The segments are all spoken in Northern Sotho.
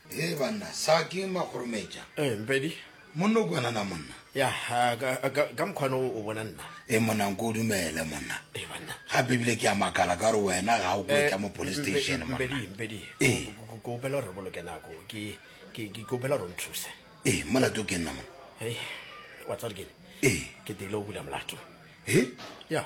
Hee banna, sa ke makgorometša. Eh, Mpedi. Monna o kwana na monna. Ya, ka mkhwana o bona nna. Eh, monna nko dumele monna. Eh, banna. Gape ebile ke a makala ka gore wena ga o kwetša eh, mo police station monna. Mpedi, Mpedi. Eh. Ke opela gore boloke nako. Ke ke ke opela gore nthuse. Eh, molato ke nna monna. Hey, wa tsare ke. Eh. Ke tile o bula molato. Eh? Ya.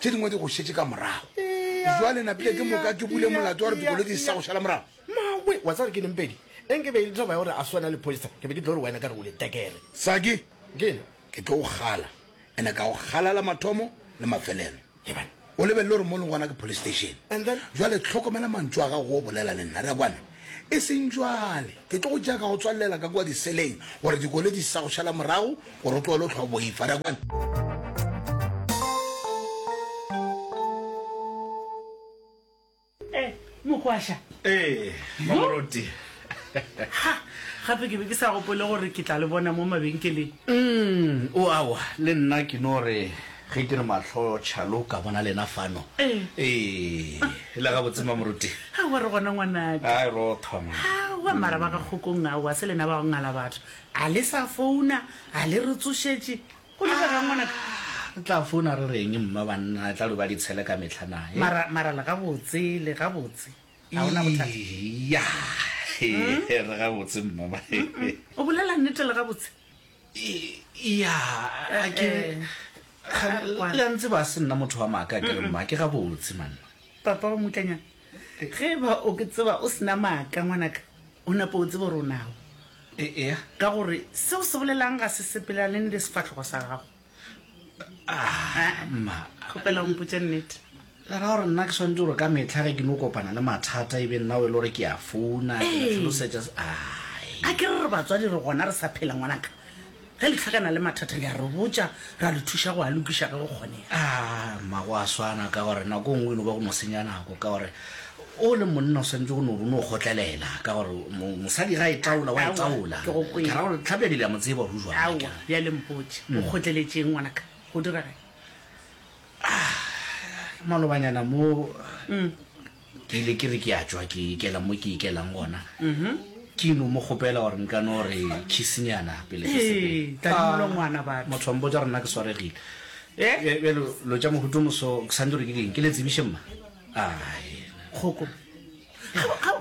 Tše dingwe di go šetše ka morago. Bjale napile ke moka ke bule molato wa gore dikoloi di sa go šala morago. Mawe, wa tseba gore ke neng pedi? Eng ke be e le toba ya gore a swana le poster, ke be ke tlo re wena ka re o le tekere. Saki, Ke na. Ke tlo go kgala, ene ka go kgalala mathomo le mafelelo. Lebana. O lebelele gore mo leng gona ke police station. And then? Bjale tlhokomela mantšu a gago o bolela le nna, re a kwana. E seng bjale. Ke tlo go tšea ka go tswallela ka kua diseleng gore dikole di se sa go šala morago gore o tloele o tlhwa boifa. Ra kwana? mokwasha ee mamoruti ha gape ke be ke sa gopole gore ke tla le bona mo mabenkeleng mm o awa le nna ke no re Ge ke re mahlo Charlo ka bona lena fano. Ee. Ee, le gabotse Mamoruti. Aowa re gona ngwanaka. Hai rothwa man. Aowa mara ba ka kgokong aowa se lena ba go ngala batho. A le sa founa, a le re tsošetše. Go direga'ng ngwanaka? Ah, re tla founa re re'ng mma banna, e tla lo ba ditshele ka mehla na he. Mara, mara le gabotse, le gabotse. A o na bothata? Eya, he, re gabotse mma ba he. O bolela nnete le gabotse? ya ke la ntse ba se nna motho wa maaka ke re mma ke ga botse man papa wa mutlanyana ge ba o ke tseba o sena maaka ngwanaka o nape o tsebo ronago ea ka gore seo se bolelang ga se sepelane le sefatlhogo sa gago mma kgopela o mpotse nnete le ra gore nna ke tshwanetse gore ka metlha ge ke no kopana le mathata e be nna o e le gore ke ya founa tlhalosetša a ke re re batswadi re gona re sa phela ngwanaka ge le tlhakana le mathata le a re botša ra le thuša go a lokiša ge go kgonega mma go a swana ka gore nako nngwe e no ba go mo senya nako ka gore O le monna o swanetše go no bo no kgotlelela ka gore mosadi ga e taola wa e taola. Ke go kwele. Ka ra gore Tlhapjadi le a mo tseba go jwang. Aowa, bjale mpotše, o kgotleletšeng ngwanaka? Go dirageng? Malobanyana mo ke ile ke re ke a tšwa ke ikela mo ke ikelang gona, ke no mo kgopela gore nka no re kissnyana pele ke sepela. Ee, tadimolwa ngwana batho. Motho wa mpotša gore nna ke swaregile. Bjale lo tša mohuto moso ke swanetše gore ke direng? Ke le tsebiše mma? ae kgoko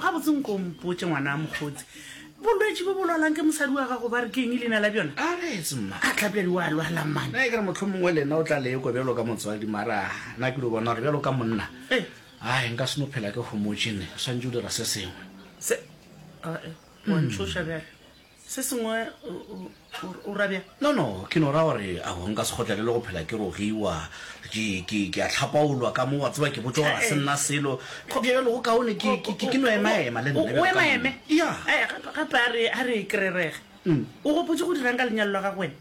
gabotse nko mpotse ngwana a mokgotsi bolwetse bo bolwalang ke mosadi wa gago ba re ke eng leina la bjona a retse mma a tlapjadi wa lwala mane na e kere motlho mongwe le nna o tla leko bjalo ka motswadi mara na ke lo bona gore bjalo ka monna Eh. ae nka seno phela ke gomotsene o swantse o dira se sengwe se ae wa ntshoša bjale Se sengwe o ra bjang? No, no, ke no ra gore a go nka se kgotlelele go phela ke rogiwa. Ke, ke, ke a hlapaolwa ka mo, wa tseba, ke botša gore ga se nna selo. Go bjalo le go kaone, ke, ke, ke no emaema le nna. O emaeme? Ya. Gape a re, a re e krerege. O gopotše go dirang ka lenyalo la gago wena?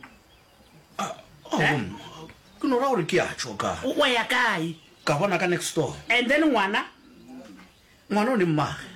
A, oh, ke no ra gore ke a tšo ka. Wa ya kae? Ka bona ka next door. And then ngwana, ngwana o ne mmage.